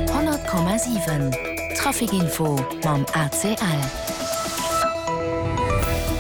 100,7 Traficinfo mam ACL.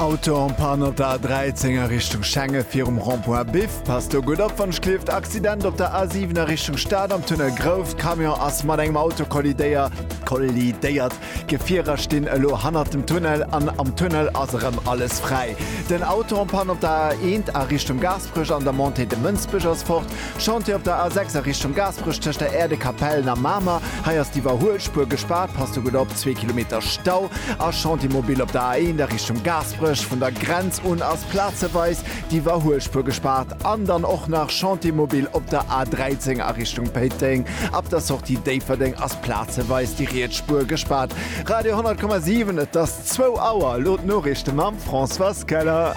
Auto en Panne op der A13 a Richtung Schengen virum Rond-point Biff. Passt do gutt op, wann ech gleeft. Accident op der A7 a Richtung Stad am Tunnel Grouft. Camion ass mat engem Auto kollidéiert. D'Gefierer stinn elo hannert dem Tunnel an am Tunnel ass erëm alles fräi. Den Auto en panne op der A1 a Richtung Gaasperech an der Montée de Mënsbech ass fort. Chantier op der A6 a Richtung Gaasperech tëscht der Aire de Capellen a Mamer, hei ass d'Iwwerhuelspuer gespaart, passt do gutt op, zwee Kilometer Stau. A Chantier mobil op der A1 a Richtung Gaasperech, vun der Grenz un ass plazeweis d'Iwwerhuelspuer gespaart. An dann och nach Chantier mobil op der A13 a Richtung Péiteng, ab der Sortie Déifferdeng ass. Plazeweis déi riets Spuer gespaart. Radio 100,7 et ass zwou Auer, elo d'Noriichte mam Françoise Keller.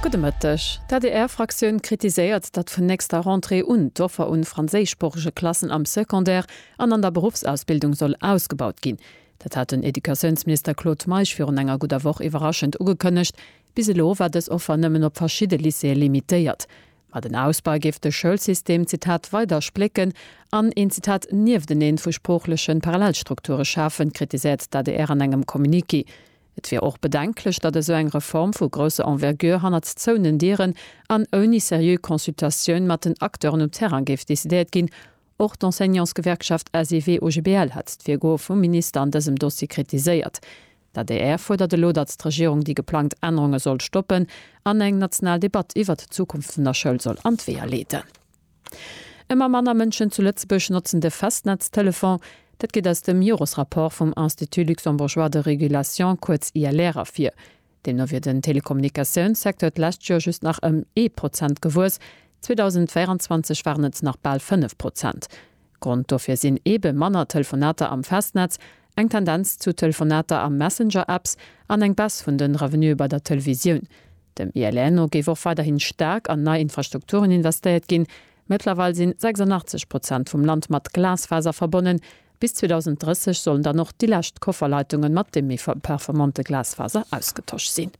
Gudde Mëtteg. D'ADR-Fraktioun kritiséiert, datt vun nächster Rentrée un d'Offer un franséischsproochege Klassen am Secondaire an an der Beruffsausbildung soll ausgebaut ginn. Dat hat den Educatiounsminister Claude Meisch virun enger gudder Woch iwwerraschend ugekënnegt. Bis elo war dës Offer nëmmen op verschidde Lycéeë limitéiert. Ma den Ausbau géif de Schoulsystem, Zitat, weider splécken an een, Zitat, Niefteneen vu sproochlechen Parallelstrukture schafen, kritiséiert d'ADR an engem Communiqué. Et wier och bedenklech, datt esou eng Reform vu grousser Envergure hannert zouenen Dieren an ouni seriö Consultatioun mat den Acteuren um Terrain géif decidéiert ginn. Och d'Enseignantsgewerkschaft SEW-OGBL hat d'Virgoe vum Minister an dësem Dossier kritiséiert. D'adr fuerdert elo, datt d'Regierung déi geplangt Ännerunge soll stoppen an eng national Debatt iwwert d'Zukunft vun der Schoul soll an d'Weeër leeden. Ëmmer manner Mënschen zu Lëtzebuerg notzen de Festnetztelefon. Dat geet aus dem Joresrapport vum Institut luxembourgeois de régulation, kuerz ILR, ervir. Deemno wier den Telekommunikatiounssecteur d'lescht Joer just nach ëm ee Prozent gewuess, 2024 waren et nach bal fënnef Prozent. Grond dofir sinn eebe manner Telefonater am Festnetz, eng Tendenz zu Telefonater a Messenger-Apps an eng Baisse vun de Revenuë bei der Televisioun. Dem ILR no géif och weiderhin staark an nei Infrastrukturen investéiert ginn. Mëttlerweil sinn 86 Prozent vum Land mat Glasfaser verbonnen. Bis 2030 sollen dann och déi lescht Kofferleitungen mat deem méi performante Glasfaser ausgetosch sinn.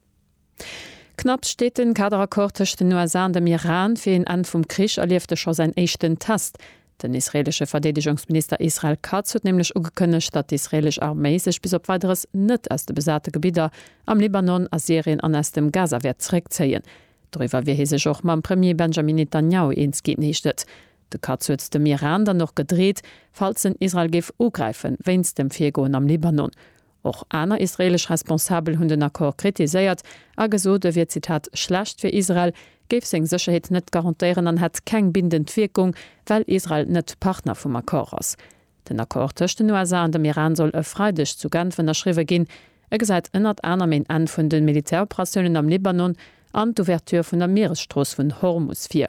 Knapps steet den Kaderaccord tëscht den USA an dem Iran fir een Enn vum Krich, erlieft e scho säin éischten Test. Den israeelesche Verdeedegungsminister Israel Katz huet nämlech ugekënnegt, datt d'israeelesch Arméi sech bis op Weideres net aus de besate Gebidder am Libanon, a Syrien an aus dem Gaza wäert zeréckzéien. Doriwwer wier hie sech och mam Premier Benjamin Netanjahu eens ginn, heescht et. De Katz huet dem Iran dann och gedreet, falls en Israel géif ugräifen, wéinst dem Virgoen am Libanon. Och aner israeelesch Responsabel hunn den Accord kritiséiert a gesot, e wier Zitat schlecht fir Israel, géif seng Sécherheet net garantéieren an hätt keng bindend Wierkung, well Israel net Partner vum Accord ass. Den Accord tëscht den USA an dem Iran soll e Freideg zu Genf ënnerschriwwe ginn. E gesäit ënnert anerem een Enn vun de Militäroperatiounen am Libanon an d'Ouverture vun der Mieresstrooss vun Hormus vir.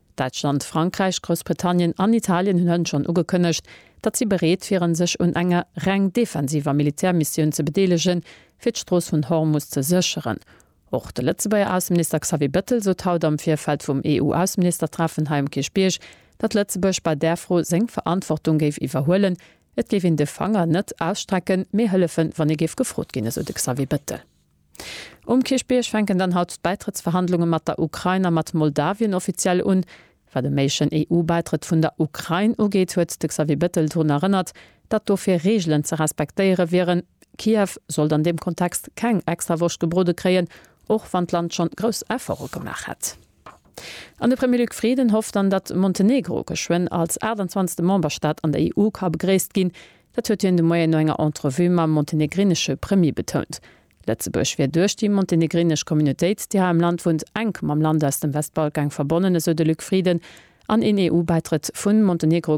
Däitschland, Frankräich, Groussbritannien an Italien hunn hënt schonn ugekënnegt, datt si bereet wieren, sech un enger reng defensiver Militärmissioun ze bedeelegen, fir d'Strooss vun Hormus ze sécheren. Och de Lëtzebuerger Ausseminister Xavier Bettel sot haut am Virfeld vum EU-Ausseministertreffen hei um Kierchbierg, datt Lëtzebuerg bei där Fro seng Verantwortung géif iwwerhuelen. Et géif een de Fanger net ausstrecken, mee hëllefen, wann ee géif gefrot ginn, esou de Xavier Bettel. Um Kierchbierg fänken dann haut d'Bäitrëttsverhandlunge mat der Ukrain a mat Moldawien offiziell un. Wat e méiglechen EU-Bäitrëtt vun der Ukrain ugeet, huet de Xavier Bettel drun erënnert, datt dofir Reegelen ze respektéiere wieren. Kiew sollt an deem Kontext keng extra Woscht gebrode kréien, och wann d'Land schonn grouss Efforte gemaach hätt. An de Premier Luc Frieden hofft dann, datt Montenegro geschwënn als 28. Memberstaat an der EU ka begréisst ginn. Dat huet hien de Moien no enger Entrevue mam montenegrinesche Premier betount. Lëtzebuerg wier duerch déi montenegrinesch Communautéit, déi hei am Land wunnt, enk mam Land aus dem Westbalkang verbonnen, esou de Luc Frieden. An een EU-Bäitrëtt vu Montenegro,